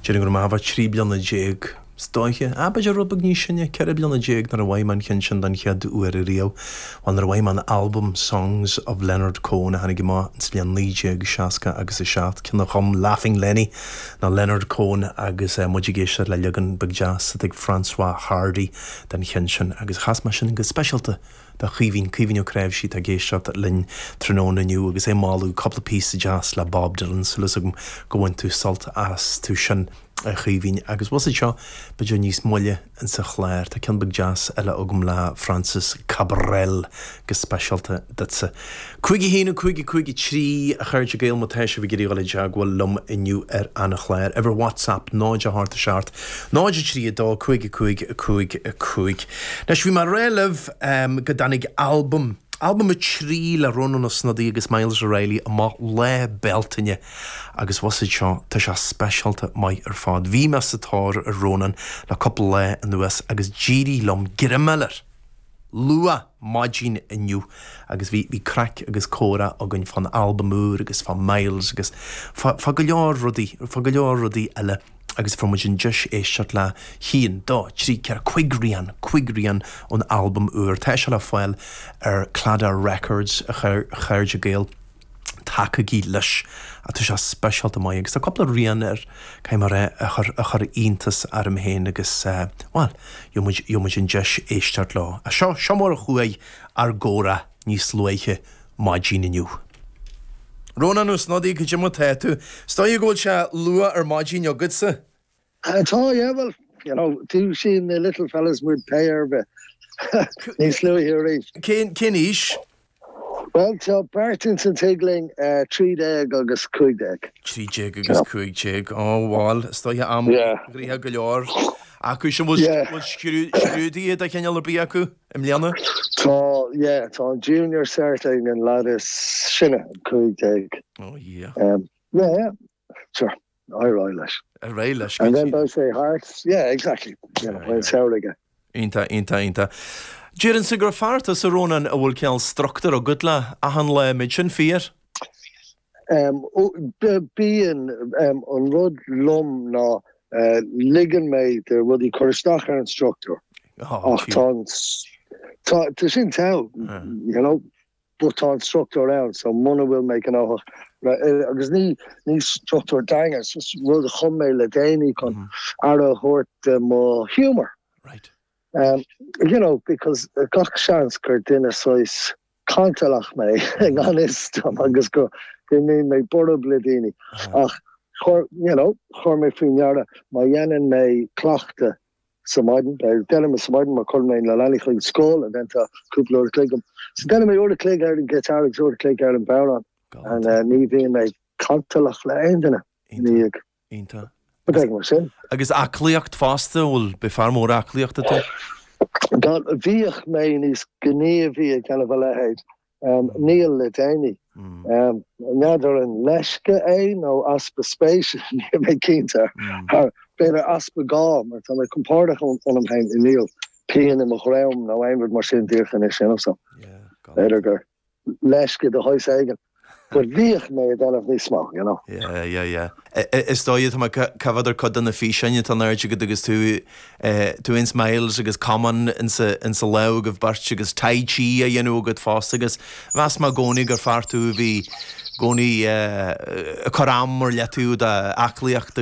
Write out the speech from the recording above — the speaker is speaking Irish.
Déarfainn go raibh mé thart fá trí bliana déag, is dóiche. Ah, b'fhéidir rud beag níos sine, ceithre bliana déag nuair a bhain mé sult as an cheann sin don chéad uair riamh. Bhuel, nuair a bhain mé an t-albam Songs of Leonard Cohen a tháinig amach insa bhliain 1960 agus a seacht, ceann a chum Laughing Lenny, nó Leonard Cohen agus muid ag éisteacht le leagan beag deas de chuid Françoise Hardy den cheann sin agus chas mé sin go speisialta do Caoimhín, Caoimhín Ó Cnáimhsí, atá ag éisteacht linn tráthnóna inniu agus é ag moladh cúpla píosa deas le Bob Dylan, súil as agam gur bhain tú sult astu sin, a Chaoimhín. Agus bhfuil a fhios agat seo b'fhéidir níos moille insa chlár, tá ceann beag deas eile agam le Francis Cabrel, go speisialta duitse. Cúig a haon, cúig a cúig a trí a chairde Gael, má tá sibh ag iarraidh a ghabháil i dteagmháil liom inniu ar an chlár, uimhir WhatsApp, náid a hocht a seacht, náid a trí a dó, cúig a cúig a cúig a cúig. Anois bhí mé ag rá libh go dtáinig albam, albam a trí le Rónán Ó Snodaigh agus Myles O'Reilly amach Lá Bealtaine agus bhfuil a fhios agat seo, tá sé speisialta maith ar fad. Bhí mé sa tóir ar Rónán le cúpla lá anuas agus d'éirigh liom greim a fháil air. luath maidin inniu agus bhí craic agus comhrá againn fán albam úr agus fá Myles agus fá go leor rudaí, fá go leor rudaí eile agus fuair muid an deis éisteacht le haon, dó, trí, ceathair, cúig rian, cúig rian ón albam úr. Tá sé le fáil ar Claddagh Records, a chairde Gael. tacaigí leis. Tá sé speisialta maith agus tá cúpla rian air, caithfidh mé a rá, a chuir, a chuir iontas orm féin agus, bhuel, gheobhaidh muid, gheobhaidh muid an deis éisteacht leo. Seo, seo mar a chuaigh ár gcomhrá níos luaithe maidin inniu. Rónán Ó Snodaigh, caidé mar tá tú? Is dóigh go bhfuil sé luath ar maidin agatsa? Tá, yeah, well, you know, dúisíonn na little fellas muid pé ar bith níos luaithe arís. Cén, cén aois? Well, tá beirt ins an tigh linn, eh, trí déag agus cúig déag. Trí déag agus cúig déag, ó, bhal, is dóigh am gnoitheach go leor acu sin, bhfuil Yeah. bhfuil scrú- scrúduithe de chineál ar bith acu i mbliana? Tá, yeah, tá an junior cert ag an lad is sine, cúig déag. Ó, yeah. Um, yeah, yeah, sure. Ar aghaidh leis. Ar aghaidh leis. Ádh mór air, cinnte ceart. Yeah, exactly. You know, bhfuil a fhios agat. Iontach, iontach, iontach. Déarfainnse gur fear tusa, Rónán, a bhfuil cineál structure ag do lá, achan lá, an mbeadh sin fíor? Um, oh, b- bíonn, um, an rud liom ná, uh, ligeann mé do rudaí cur isteach ar an structure. Oh, ach tá an s- tá, tá sin tough, you know, but tá an struchtúr ann, so muna bhfuil mé gnóthach, agus ní ní struchtúr daingean, is just rud a chum mé le déanaí chun aire a thabhairt de mo humour. Right. Um, you know, because gach seans gur duine saghas cantalach mé i ngan fhios dom agus go mbíonn mé borb le daoine, ach chuir, you know, chuir mé faoi ndeara, má dhéanann mé cleachtadh Sa mhaidin, má dhéanann mé sa mhaidin má chuir mé na leanaí chuig scoil déanta cúpla uair a chloig. Is déanann mé uair a chloig ar an ngiotár agus uair a chloig ar an bhodhrán. Ní bhíonn mé cantalach le aon duine ina dhiaidh. Iontach. Rud éigin mar sin. Agus aclaíocht fosta, bhfuil, beidh fear mór aclaíochta tú? Bhíodh mé níos gníomhaí ag déanamh a leithéid Níl le déanaí. N'fheadar an leisce é nó easpa spéise, níl mé cinnte. B'fhéidir easpa gá, mar tá mé compordach ionam féin, níl pian i mo dhroim nó aon rud mar sin, díreach anois, you know, so b'fhéidir gur leisce de shaghas éigin. Gur bhíodh mé á dhéanamh níos mó, you know. Yeah, yeah, yeah. Is dóigh tá mé ag amharc ar chuid de na físeáin atá in airde agat agus tú, eh, tú fhéin is Myles agus camán ins a, ins a lámh agaibh beirt agus Tai Chi á dhéanamh agat fosta agus mheas mé i gcónaí gur fear tú a bhí i gcónaí, eh, cur am ar leataobh don aclaíocht